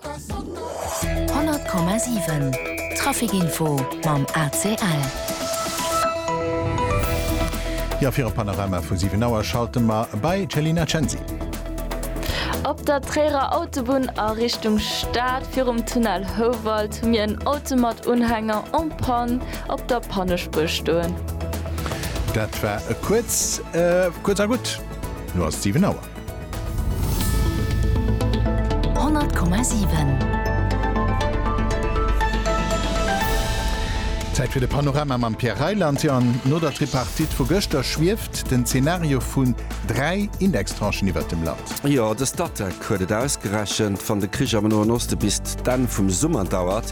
100,7 Trafic Info mam ACL. Jo fir e Panorama vu 7 Auer schalte mer bei d'Chelina Censi. Op der Tréierer Autobunn a Richtung Stad virum Tunnel Houwald hu mir en Auto mat Unhänger en panne op der Pannespuer stoen. Dat war e kuerz, kuerz a gutt, elo ass et 7 Auer. Zäit fir de Panorama mam Pierre Reyland. Jo, an no der Tripartite vu gëschter schwieft den Zenario vun dräi Indextranchen iwwert dem Land. Jo, de Statec huet et ausgerechent, Wann de Krich am Noen Oste bis d'Enn vum Summer dauert,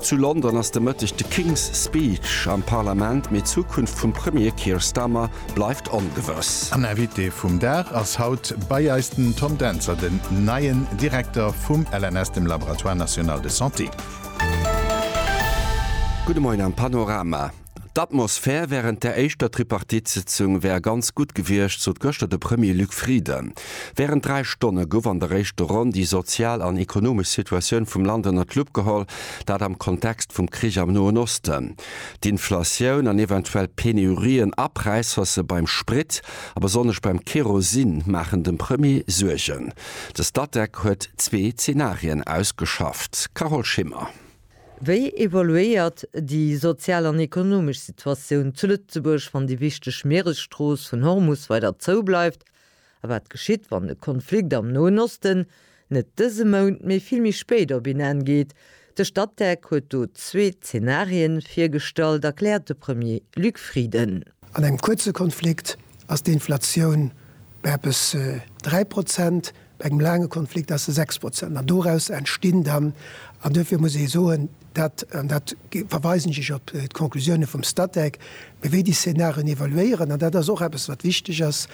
Zu London ass de Mëtteg de King's Speech am Parlament, mee d'Zukunft vum Premier Keir Starmer bleift ongewëss. An Invité vum Dag ass haut bei eis den Tom Dentzer, den neien Direkter vum LNS, dem Laboratoire National de Santé. Gudde Moien am Panorama. D'Atmosphär wärend der éischter Tripartite-Sëtzung wär ganz gutt gewiescht, sot gëschter de Premier Luc Frieden. Wärend dräi Stonne gouf an der éischter Ronn déi sozial an ekonomesch Situatioun vum Land ënner d'Lupp geholl, dat am Kontext vum Krich am Noen Osten. D'Inflatioun an eventuell Penurien a Präishausse beim Sprit a besonnesch beim Kerosin maachen dem Premier Suergen. De Statec huet zwee Zenarien ausgeschafft. Carole Schimmer. Wéi evoluéiert déi sozial an ekonomesch Situatioun zu Lëtzebuerg, wann déi wichteg Mieresstrooss vun Hormus weider zou bleift? A wat geschitt, wann de Konflikt am Noen Osten net dëse Mount, mee vill méi spéit op een Enn geet? De Statec huet do zwee Zenarien virgestallt, erkläert de Premier Luc Frieden. An engem kuerze Konflikt ass d'Inflatioun bei eppes 3 Prozent, Bei engem laange Konflikt ass e 6 Prozent. An doraus entstinn dann, an duerfir muss ee soen, dat, an da verweisen ech op d'Conclusioune vum Statec, mee wéi déi Szenarien evoluéieren, an dat ass och eppes, wat wichteg ass,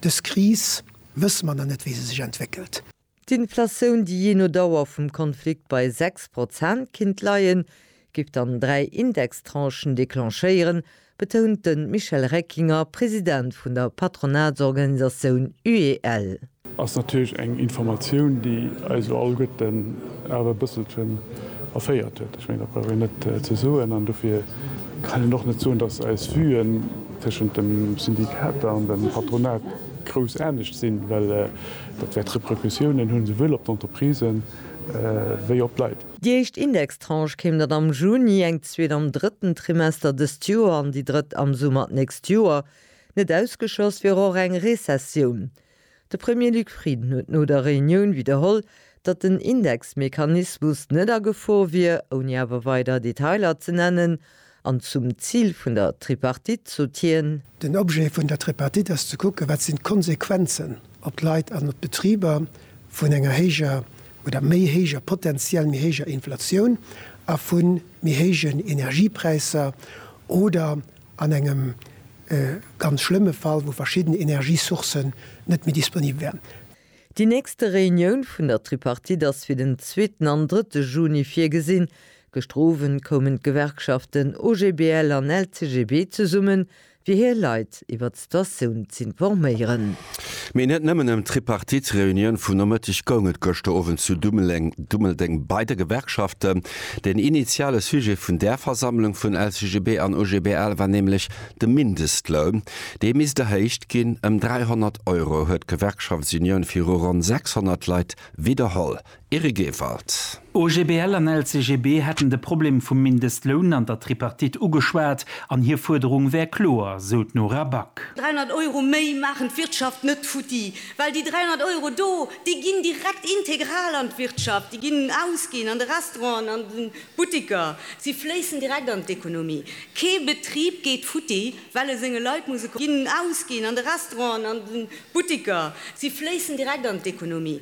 dës Kris wësse mer nach net, wéi se sech entwéckelt. D'Inflatioun, déi jee no Dauer vum Konflikt bei 6 Prozent kinnt leien, géif dann dräi Indextranchen declenchéieren, betount de Michel Reckinger, President vun der Patronatsorganisatioun UEL. Ass natierlech eng Informatioun, déi eis elo alleguerten awer e bësselchen erféiert huet. Ech mengen, dat brauch een net ze soen. An dofir kann een och net soen, dass eis Vuen tëschent de Syndikater an dem Patronat grouss anescht sinn, well dat wäert Repercussiounen hunn, souwuel op d'Entreprisen wéi op d'Leit. Déi éischt Index. Tranche kéim dat am Juni, eng zweet am drëtten Trimester dëst Joer an déi drëtt am Summer d'nächst Joer. Net ausgeschloss wier och eng Rezessioun. De Premier Luc Frieden huet no der Reunioun widderholl, datt den Indexmechanismus net a Gefor wier, ouni awer weider Detailer ze nennen. An zum Zil vun der Tripartite sot hien. Den Objet vun der Tripartite ass ze kucken, wat sinn d'Konsequenzen op d'Leit an op d'Betriber vun enger héijer oder méi héijer, potentiell méi héijer Inflatioun a vu méi héijen Energiepräisser oder an engem ganz schlëmme Fall, wou verschidden Energiesourcen net méi disponibel wären. Déi nächste Reunioun vun der Tripartite ass fir den zweeten an drëtte Juni virgesinn. Gëschter Owend koumen d'Gewerkschaften OGBL an LCGB zesummen, fir hir Leit iwwert d'Situatioun z'informéieren. Mee net nëmmen ëm d'Tripartite-Reunioun vum Nomëtteg goung et gëschter Owend zu Dummeldeng bei de Gewerkschaften. Den initiale Sujet vun där Versammlung vun LCGB an OGBL war nämlech De Mindestloun, dee misst erhéicht ginn ëm 300 Euro, huet d'Gewerkschaftsunioun viru ronn 600 Leit widderholl. Eric Ewald. OGBL an LCGB hätten de Problem vum Mindestloun an der Tripartite ugeschwat an hir Fuerderung wär kloer, sou d'Nora Back. 300 Euro méi maachen d'Wirtschaft net futti, well déi 300 Euro do, déi ginn direkt integral an d'Wirtschaft, déi ginn ausginn an de Restauranten, an de. D'Buttiker, si fléissen direkt an d'Ekonomie. Kee Betrib geet futti, well e senge Leit muss e Konto ginn. Ausginn an de Restauranten, an de Buttiker, si fléissen direkt an d'Ekonomie.